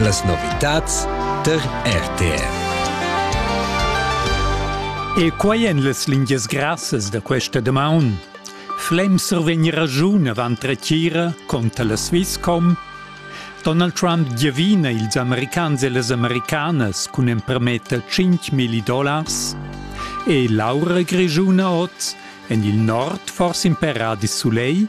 Las novitads tar RTR. E quai èn las lingias grassas da questa damaun. Flem survegn ragiun avant retira contra la Swisscom. Donald Trump giavina ils americans e las americanas cun empermetter 5.000 dollars. E l'aura grigiuna oz, en il nord forse in per radis soleil,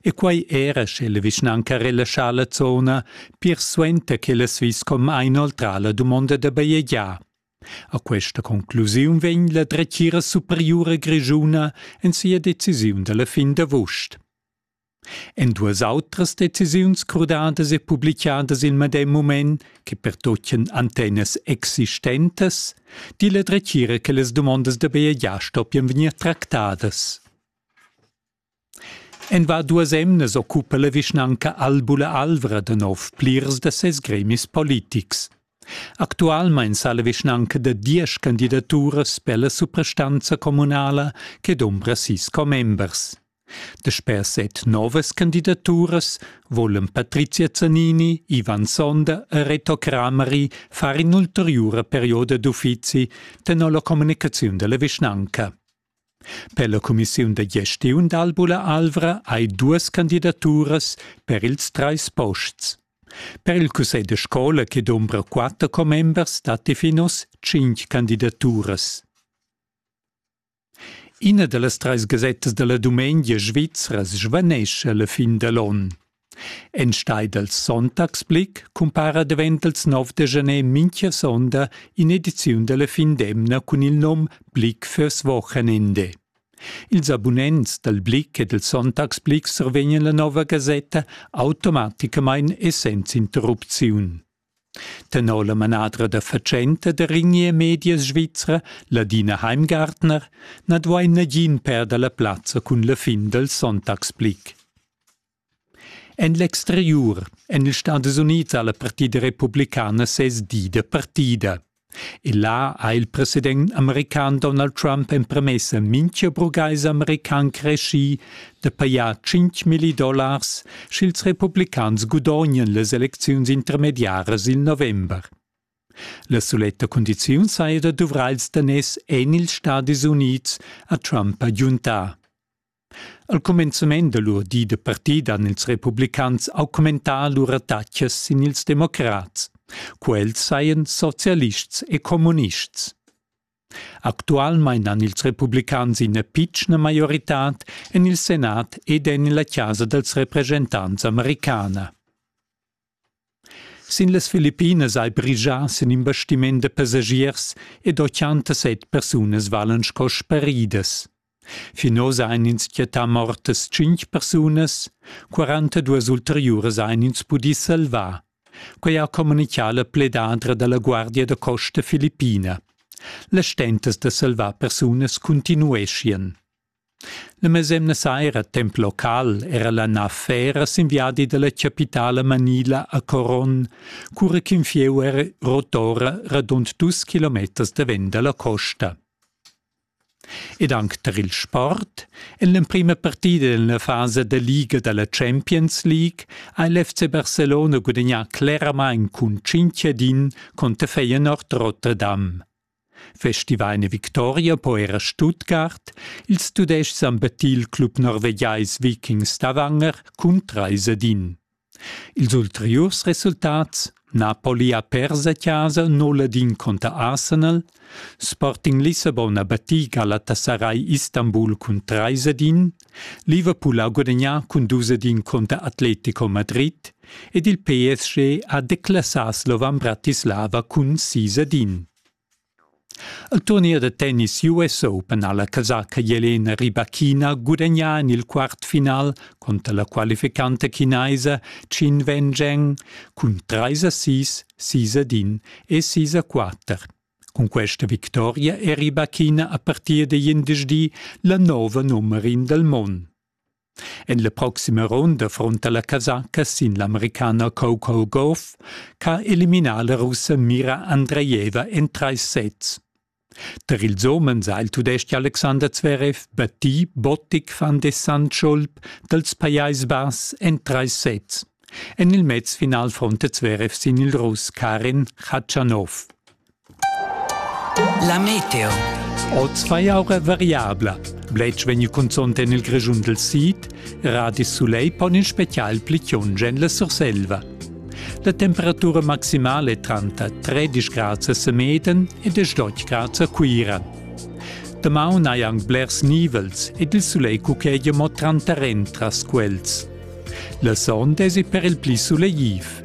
E quei era sche la vischnanca relaschà la zona pir suenter ch'el ha vis con inoltrà la dumonda da bajegiar. A questa conclusiun vegn la dretgira superiura grischuna en sia decisiun dalla fin d'avust. En duas autras decisiuns crudadas e publicadas il medem mument che pertocchen antennas existentes, di la dretgira che las dumondas da bajegiar stoppian vegnir tractadas. En va duas emnas occupa la vischnanca Albula Alvra da nov plirs da ses gremis politics. Actualmein sa la vischnanca da diesch candidaturas per la suprastanza communala che dombra sis commembers. Dasper set novas candidaturas volan Patrizia Zanini, Ivan Sonda e Reto Kramari far in'ulteriura perioda d'uffizi tenor la communicaziun dalla vischnanca. Per la cumissiun da gestiun d'Albula Alvra hai duas candidaturas per ils trais posts. Per il cussegl da scola che dombra quatter commembers datti fin oz tschintg candidaturas. Ina da las trais gasettas da la dumengia svizra svanescha la fin da l'onn. Enstei dals Sonntagsblick cumpara davent els 9 de janer mincha sonda in'ediziun dalla fin d'emna cun il nom Blick fürs Wochenende. Ils abunents dal Blick e dal Sonntagsblick survegnan la nova gasetta automaticamain e senza interrupziun. Tenor la manadra da fatschenta da Ringier Medias Svizra, Ladina Heimgartner, na duai nagin perder la plazza cun la fin dal Sonntagsblick. En l'exteriur èn ils Stadis Unids ha la partida republicana sez di da partida. E là ha il president american Donald Trump empremessa mintga burgais american creschì da pajar 5 milli dollars, sch'ils republicans gudognan las elecziuns intermediaras il november. La suletta cundiziun saja da duvrar ils daners en ils Stadis Unids, ha Trump agiuntà. Al cumenzament da lur di da partida han ils republicans augmentà lur attacas sin ils democrats. Quels sajan socialists e communists. Actualmain han ils republicans ina pitschna maioritad en il senat ed en la chasa dals represchentants americana. Sin las Filippinas ei brigia sin in bastiment da passagiers ed ochantasset persunas valan sco sparidas. Fin oz ein ins quietà mortas tschintg persunas, 42 ulteriuras ein ins pudì salvar. Quei ha communicà la pledadra dalla Guardia da costa filippina. Las stentas da salvar persunas continueschien. La mesemna saira temp local era la nav Fera sin viadi dalla capitala manila a Coron, cura ch'in fieu era rotora radund dus kilometers davent dalla costa. Ed anc tar il sport, en l'emprima partida en la fasa da liga da la Champions League ha l'FC Barcelona gudagnà cleramain cun Cinchadin conter Feyenoord Rotterdam. Festivaina Victoria po eir a Stuttgart, ils Tudais-chs han battì il club norvegiais Vikings da Wanger cun trais ed in. Ils ulteriurs resultats Napoli ha pers a chasa 0 ed in conter Arsenal, Sporting Lissabon ha battì Galatasaray Istanbul cun trais ed in, Liverpool ha gudagnà cun dus ed in conter Atletico Madrid, ed il PSG ha declassà Slovan Bratislava cun sis ed in. Il turnier da tennis US Open ha la casaca Jelena Rybakina gudagnà en il quartfinal conter la qualificanta chinaisa Qin Wenzheng cun 3 a 6, 6 ad 1 e 6 a 4. Cun questa victoria è Rybakina a partir da glindesdi la nova nummer in del mond. En la proxima ronda fronta la casacca sin l'americana Coco Gauff ch'ha eliminà la russa Mira Andreeva en trais sets. Tar ils homens ha il tudestg Alexander Zverev battì Bottic van de Sandschulp dals Pajais Bass en trais sets. En il mezfinal fronta Zverev sin il Russ Karin Khachanov. La meteo. Oz fa aura variabla. Bletsch vegni cunzont en il Grischun del Sid, radis Soleil pon in special plichiunge en la Surselva. La temperatura maximale è tranta 13 grad a Semeden e 18 grad a Cuira. Damaun hai anc blers nivels ed il sulegl cuchegia mo tranta rentras quels. La sonda è per il pli sulegliv.